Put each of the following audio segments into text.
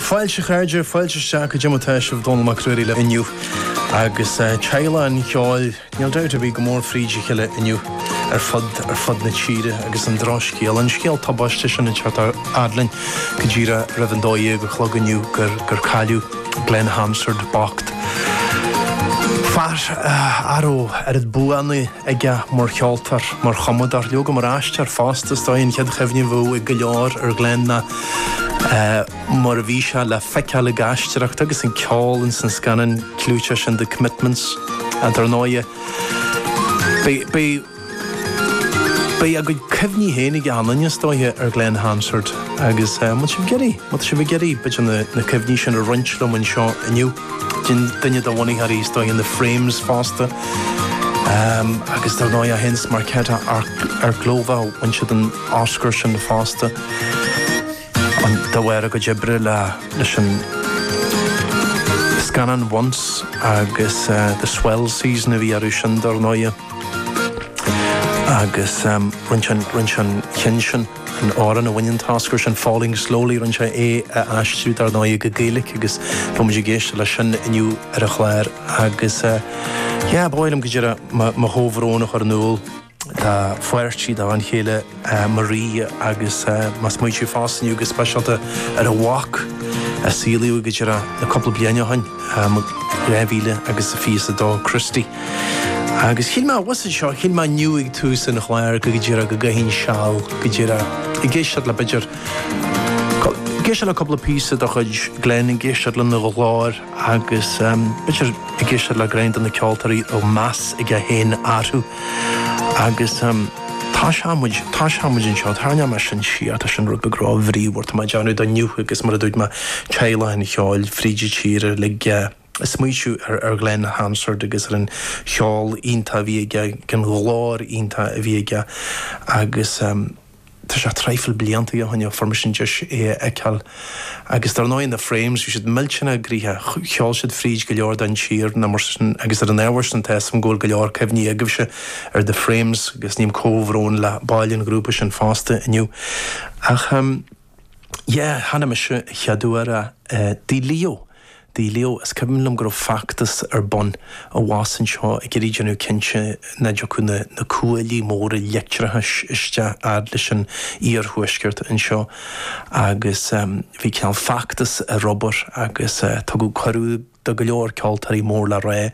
Fáilte a chairde, fáilte isteach, goidé mar tá sibh, Dónall Mac Ruairí libh inniu agus teaghlach an cheoil, níl dabht ar bith, go mór fríd a chéile inniu ar fud ar fud na tíre agus an drochscéal, an scéal tubaisteach sin ag teacht a fhad linn go díreach roimh an dó dhéag a chlog inniu gur gur cailleadh Glen Hansard bocht. Fear a raibh oiread buanna aige mar cheoltóir, mar chumadóir, leoga mar aisteoir fosta. Is dóiche an chéad chuimhne a bheadh ag go leor ar Glen ná mar a bhí sé le feiceáil ag aisteoireacht agus ag ceol ins an scannán clúiteach sin The Commitments. Dar ndóighe, beidh a gcuid cuimhní féin ag achan duine, is dóiche, ar Glen Hansard agus má tá sibh ag iarraidh, má tá sibh ag iarraidh b'fhéidir na cuimhní sin a roinnt liom anseo inniu. Bíonn duine de bhunaitheoirí is dóiche in The Frames fosta agus dar ndóigh é féin is Markéta Irglová, bhain siad an Oscar sin fosta de bharr a gcuid oibre leis an scannán Once agus The Swell Season a bhí orthu sin dar ndóigh agus rinne siad an ceann sin. An t-amhrán a bhain an tOscar sin, Falling Slowly, rinneadh é a aistriú dar ndóigh go Gaeilic agus beidh muid ag éisteacht leis sin inniu ar an chlár agus yeah, ba mhaith liom go díreach mo chomhbhrón a chur in iúl dá pháirtí, dá bhean chéile Maire agus mé ag smaointiú fosta inniu go speisialta ar a mhac a saolaíodh go díreach le cúpla bliain ó shin, 2022, Christy. Agus shíl mé abhus anseo, shíl mé inniu ag tús an chláir go díreach go gcaithfinn seal go díreach ag éisteacht le b'fhéidir, ag éisteacht le cúpla píosa de chuid Glen, ag éisteacht lena ghlór agus b'fhéidir ag éisteacht le roinnt de na ceoltóirí a raibh meas aige féin orthu. Agus toiseoidh muid, toiseoidh muid anseo, tarraingeoidh mé sin síos, tá sin rud beag ró-bhríomhar, tá mé ag déanamh do inniu, agus mar a dúirt mé, teaghlach an cheoil, fríd an tír uilig. ag smaointiú ar Glen Hansard agus ar an cheol iontach a bhí aige, an ghlór iontach a bhí aige agus tá sé traidhfil blianta ó shin ó fuair mise an deis é a fheiceáil. Agus dar ndóigh, The Frames, bhí siad millteanach gnoitheach, cheol siad fríd go leor den tír agus ar an ábhar sin tá 'fhios a'm go bhfuil go leor cuimhní agaibhse ar The Frames agus ním comhbhrón le baill an ghrúpa sin fosta inniu. Ach. Yeah, chonaic mise an chéad uair é, Tigh Leo, Tigh Leo. Is cuimhin liom go raibh feachtas ar bun abhus anseo ag iarraidh déanamh cinnte nach dtiocfadh na na cuaillí móra leictreachais isteach fhad leis an iarthuaisceart anseo agus bhí cineál feachtas ar obair agus tugadh cuireadh do go leor ceoltóirí mór le rá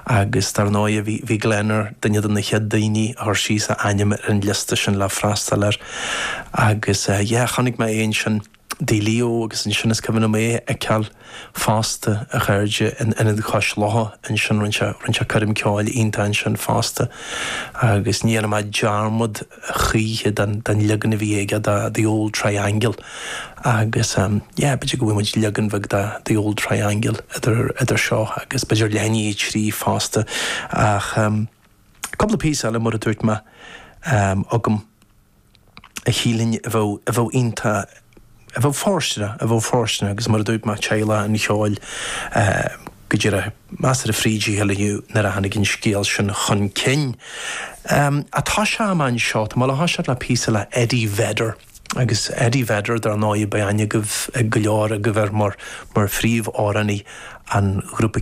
agus dar ndóigh bhí Glen ar duine de na chéad daoine a chuir síos a ainm ar an liosta sin le freastal air agus yeah chonaic mé é ansin i dTigh Leo agus ansin is cuimhin liom é a fheiceáil fosta a chairde in Ionad Chois Locha ansin rinne sé rinne sé coirm ceoil iontach ansin fosta agus ní dhéanfaidh mé dearmad choíche den leagan a bhí aige de The Old Triangle agus yeah, b'fhéidir go bhfaighidh muid leagan bheag de The Old Triangle idir seo agus b'fhéidir leath i ndiaidh a trí fosta ach cúpla píosa eile mar a dúirt mé agam a shílfinn a bheadh iontach. a bheadh fóirsteanach, a bheadh fóirsteanach agus mar a dúirt mé tá saol an cheoil go díreach measctha fríd a chéile inniu nuair a tháinig an scéal sin chun cinn. Atá sé agam anseo, tá mé ag gabháil a thoiseacht le píosa le Eddie Vedder agus Eddie Vedder dar ndóigh beidh aithne agaibh, ag go leor agaibh air mar mar phríomhamhránaí an ghrúpa